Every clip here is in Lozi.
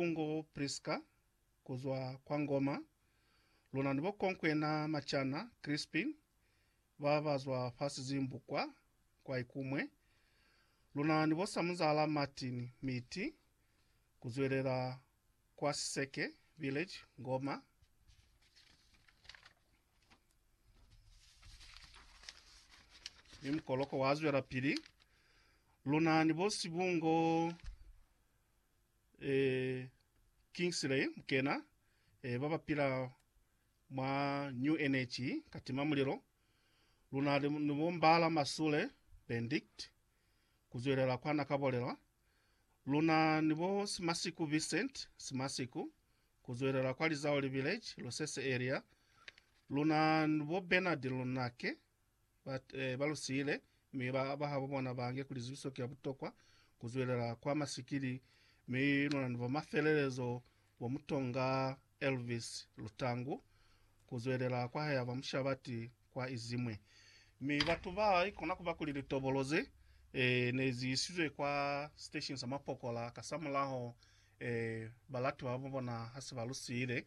U ngo Priska, ku zwa kwa Ngoma, luna ni bo konkwena macana, Krispin, ba ba zwa fa Sizimbu kwa, kwa Ikumwe, luna ni bo Samuzala Martin, Miti, ku zwelela kwa Siseke, Village, Ngoma. Mi mukoloko wa zwelapili, luna ni bo Sibungo. Ee, Kingsley Mkena, ee, ba ba pila mwa New Energy, ka tima mulilo. Luna ni, ni bo Mbala Masule, Bendict, ku zwelela kwa na ka bolela. Luna ni bo Simasiku Vincent, Simasiku, ku zwelela kwa Lizaoli Village, Losese Area. Luna ni bo Bernard Lunake, ba, eh, ba lu siile, mi ba, bahabo bona ba nge kuli zibiso ki ya butokwa ku zwelela kwa masikili, mi luna ni bo mafelelezo bo Mutonga Elvis Lutangu ku zwelela kwa haya ba mushabati kwa izimwe. Mi batu ba i kona kuba kuli litobolo ze, eh, ne zi isizwe kwa station sa mapokola kasamulaho, eh, balati babo bona hase ba lu siile,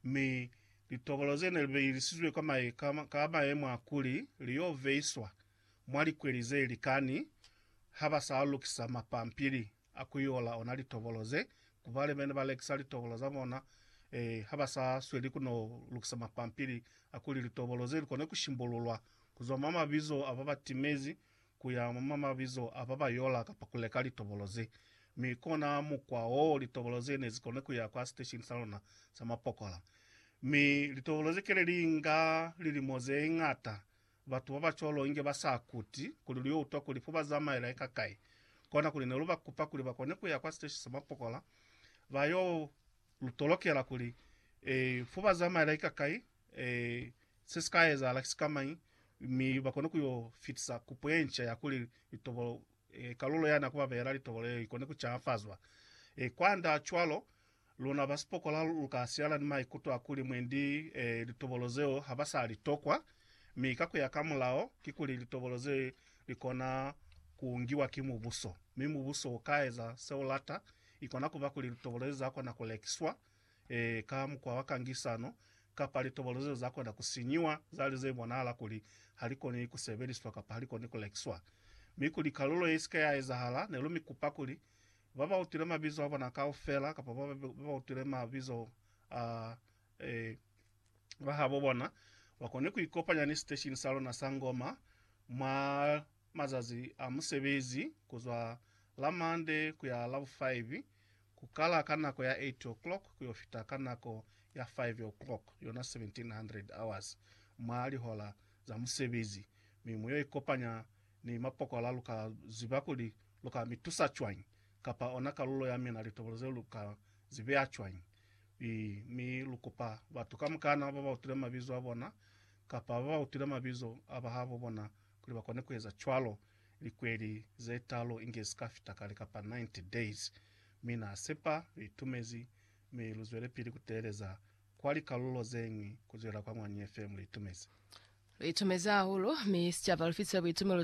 mi Litokolo ze ne li behilisizwe ka mahe ka mayemo a kuli li y'o veiswa mwa likweli ze likani ha ba sa lukisa mapampili a ku yola ona litokolo ze, ku ba ne ba lekisa litokolo za bona ha ba sa sweli ku n'o lukisa mapampili a kuli litokolo ze li kone ku shimbululwa ku zwa mwa mabizo a ba ba timezi ku ya mwa mabizo a ba ba yola kapa ku leka litobolo ze. Mi kona mukwa wo litobolo ze ne zi koni ku ya kwa siteshini sa luna sa mapokola. Mi litobolo ze kele li inga lilimo ze ñata, batu ba ba cwalo inge ba sa kuti kuli lu yo utwa kuli fo ba zamaela eka kai. Kona kuli ne lu ba kupa kuli ba kone ku ya kwa siteshini sa mapokola, ba yo lu tolokela kuli, e, fo ba zamaela eka kai, Ee, se si ka ezahala ki sikamañi, mi ba kone ku yo fitisa kupo ye nca ya kuli litobolo, e, kalulo ya na ku ba beela litobolo yeo i kone ku caafazwa. E, kwand'a cwalo, luna ba sipokola lu ka siala ni maikuto a kuli mwendi, e, litobolo zeo ha ba sa li tokwa, mi ka ku ya ka mulao, kikuli litobolo ze li kona ku ngiwa ki mubuso, mi mubuso u ka eza se u lata, i kona ku ba kuli litobolo ze za kona ku lekiswa, ee, ka mukwa wa kangisano, kapa litobolo zeo za kona ku sinyiwa, za li ze bonahala kuli ha li koni ku sebeliswa kapa ha li koni ku lekiswa. Mi kuli kalulo ye si ke ya ezahala, ne lu mi kupa kuli, ba ba utwile mabizo a bona kaufela, kapa ba ba utwile mabizo a ee, ba habo bona, ba kone ku ikopanya ni siteshini sa luna sa ngoma mwa Mazazi a musebezi ku zwa la Mande ku ya la bu 5, ku kala ka nako ya 8 o'clock ku yo fita ka nako ya 5 o'clock, yona 1700 hours, mwa lihola za musebezi, mi mu yo ikopanya ni mapokola lu ka ziba kuli lu ka mi tusa cwañi, kapa ona kalulo ya mina litobolo zeo lu ka zi beya cwañi. I, mi lu kupa batu kamukana ba ba utile mabizo a bona, kapa ba ba utile mabizo a bahabo bona, Kuli ba kone ku eza cwalo, likweli ze talu inge si ka fita kale kapa 90 days. Mi na sepa lu itumezi, mi lu zwelepili ku teeleza kwa likalulo ze ñwi ku zwela kwa mwa New FM. Lu itumezi. Lu itumezi hahulu, mi sicaba lu fitile buitumelo